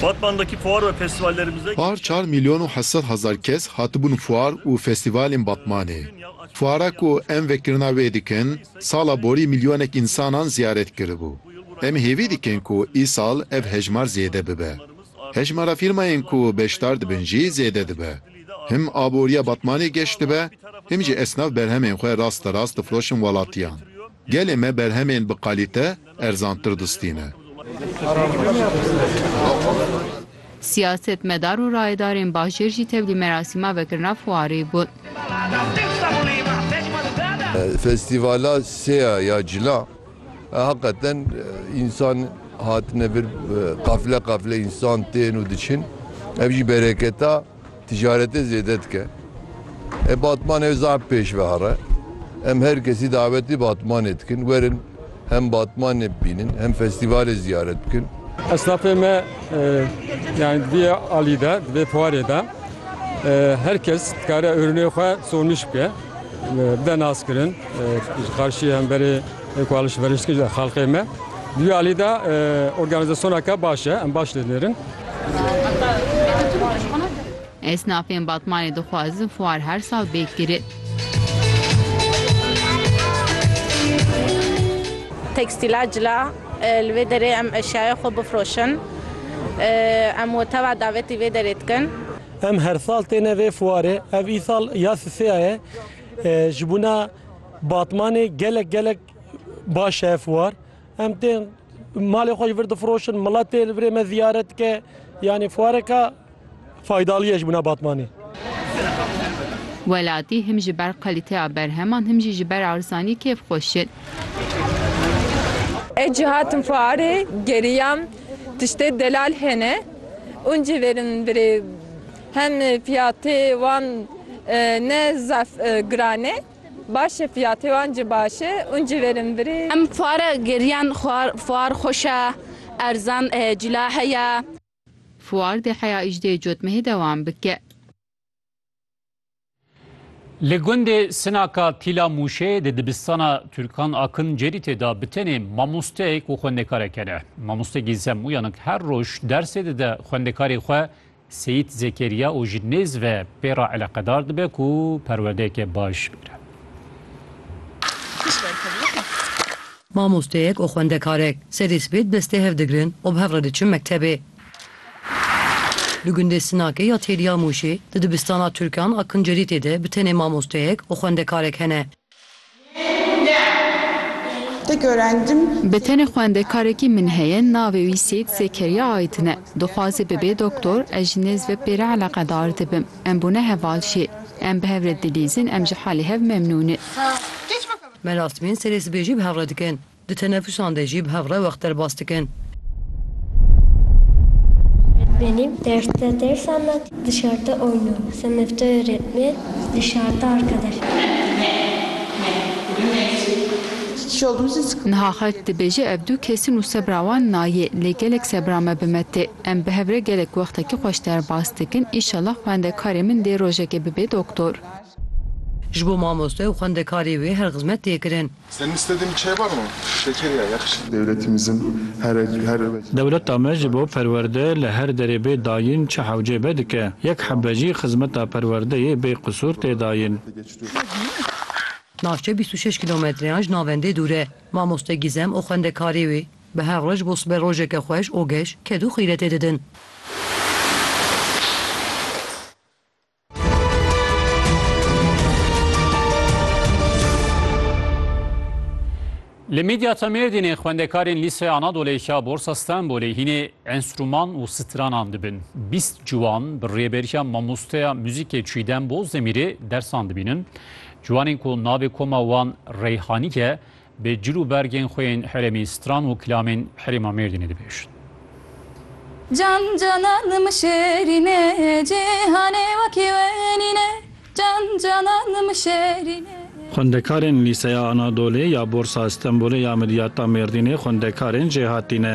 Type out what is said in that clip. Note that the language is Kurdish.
Batmandaki fuar ve festivallerimizde. Par çar milyon û heft sed hezar kes hatibûn fuar û festivalên Batmanê. Fuara ku em vekirina wê dikin, sala borî milyonek însanan ziyaret kiribû. Em hêvî dikin ku îsal ev hejmar zêde bibe. Hejmara fîrmayên ku beşdar dibin jî zêde dibe. Him aboriya Batmanê geş dibe, him jî esnaf berhemên xwe rasterast difiroşin welatiyan. Gelê me berhemên bi qalîte erzantir distîne. Siyasetmedar û rayedarên bajêr jî tevlî merasîma vekirina fuarê bûn. Festîvala Sêya ya Cila heqeten însan hatine vir qafile qafile însan tên û diçin ev jî bereketa. Ticaretê zêde dike. E Batmanê ew zaf pêş ve here. Em her kesî dawetî Batmanê dikin werin hem Batmanê bibînin hem festîvalê ziyaret bikin. Esnafê me yanî di vê alî de, di vê fuarê de her kes dikare ürünê xwe sonmîş bike, bide naskirin ji xarşî hemberê. Ê ku alî şiverî şikê ji xelqê me. Dûya alî de organîzasyoneke baş e. Em baş lê dinêrin. Esnafên Batmanê dixwazin fuar her sal bêk kirin. Tekstîla cila, Li vê derê em eşyaya xwe bifroşin. Em woteva davetî vê derê dikin. Em her sal têne vê fuarê. Ev îsal ya sisêya ye. Ji bona. Batmanê gelek gelek baş e ev fuar. Em tên malê xwe ji vir difiroşin, milet tê li virê me ziyaret dike. Yanî fuareka faydalî ye ji bûna Batmanê. Welatî him ji ber kalîteya berheman him jî ji ber erzanî kêf xweş e. Ez cî hatim fuarê geriyam tiştê delal hene û cî vêrin min birê. Hem fiyatê wan ne zaf giran e. Baş e fiyatê wan ci baş e un ci verin virê. Em fuara geriyan fuar xweş e erzan cila heye. Fuar dê heya îjdê cotmehê dewam bike. Li gundê Sinaka Tîla Mûşê di dibistana Turkan Akın Ceritê de bi tenê mamosteyek û xwendekareke ne. Mamoste Gîlsem Uyanık her roj dersê dide xwendekarê xwe Seyîd Zekeriya û ji nêz ve pê re eleqedar dibe ku perwerdeyeke baş bigre. Mamosteyek û xwendekarek serê sibê di destê hev digirin û bi hev re diçin mektebê. Di gundê Sinakê ya Têliya Mûşê di dibistana Tirkan a Kincerîtê de bi tenê mamosteyek û xwendekarek hene. Bi tenê xwendekarekî min heye navê wî Sêyîd Zekeriya Aydin e. Dixwaze bibe doktor, ez ji nêz ve pê re eleqedar dibim. Em bûne heval jê. Em bi hev re dilîzin, em ji halê hev memnûn in. Me navtibîn serê sibê jî bi hev re dikin. Di tenefûsan de jî bi hev re wext derbas dikin. Benim derste ders anlat, dışarıda oyna. Sınıfta öğretmen, dışarıda arkadaş. Niha xelk dibêje ev du kesî nû sebra wan nayê lê gelek sebra me bi me tê. Em bi hev re gelek wextekî xweş derbas dikin îşallah xwendekarê min dê rojekê bibê doktor. Ji bo mamoste û xwendekarê wê her xizmet tê kirin. Dewleta me ji bo perwerde li her derê bê dayîn çi hewcê be dike. Yek hebe jî xizmeta perwerdeyê bê qisûr tê dayîn. Navçe bîst û şeş kîlometreyan ji navendê dûr e. Mamoste Gîzem û xwendekarê wê bi her roj bo siber rojeke xweş û geş ked û xîretê didin. Li Midyata Mêrdînê xwendekarên Lîseya Anadolê ya Borsa Stenbolê hînê enstrûman û stranan dibin. Bîst ciwan bi rêberiya mamosteya muzîkê Çîdem Bozdemirê dersan dibînin. Ciwanên ku navê koma wan Reyhanîk e, Bi cil û bergên xwe yên herêmî stran û kilamên herêma Mêrdînê dibêjin. Can canan min şêrîn e, cîhanê wekî we nîn e, can canan min şêrîn e. Xwendekarên Lîseya Anadolê ya Borsa Stenbolê ya Midyata Mêrdînê xwendekarên jêhatî ne.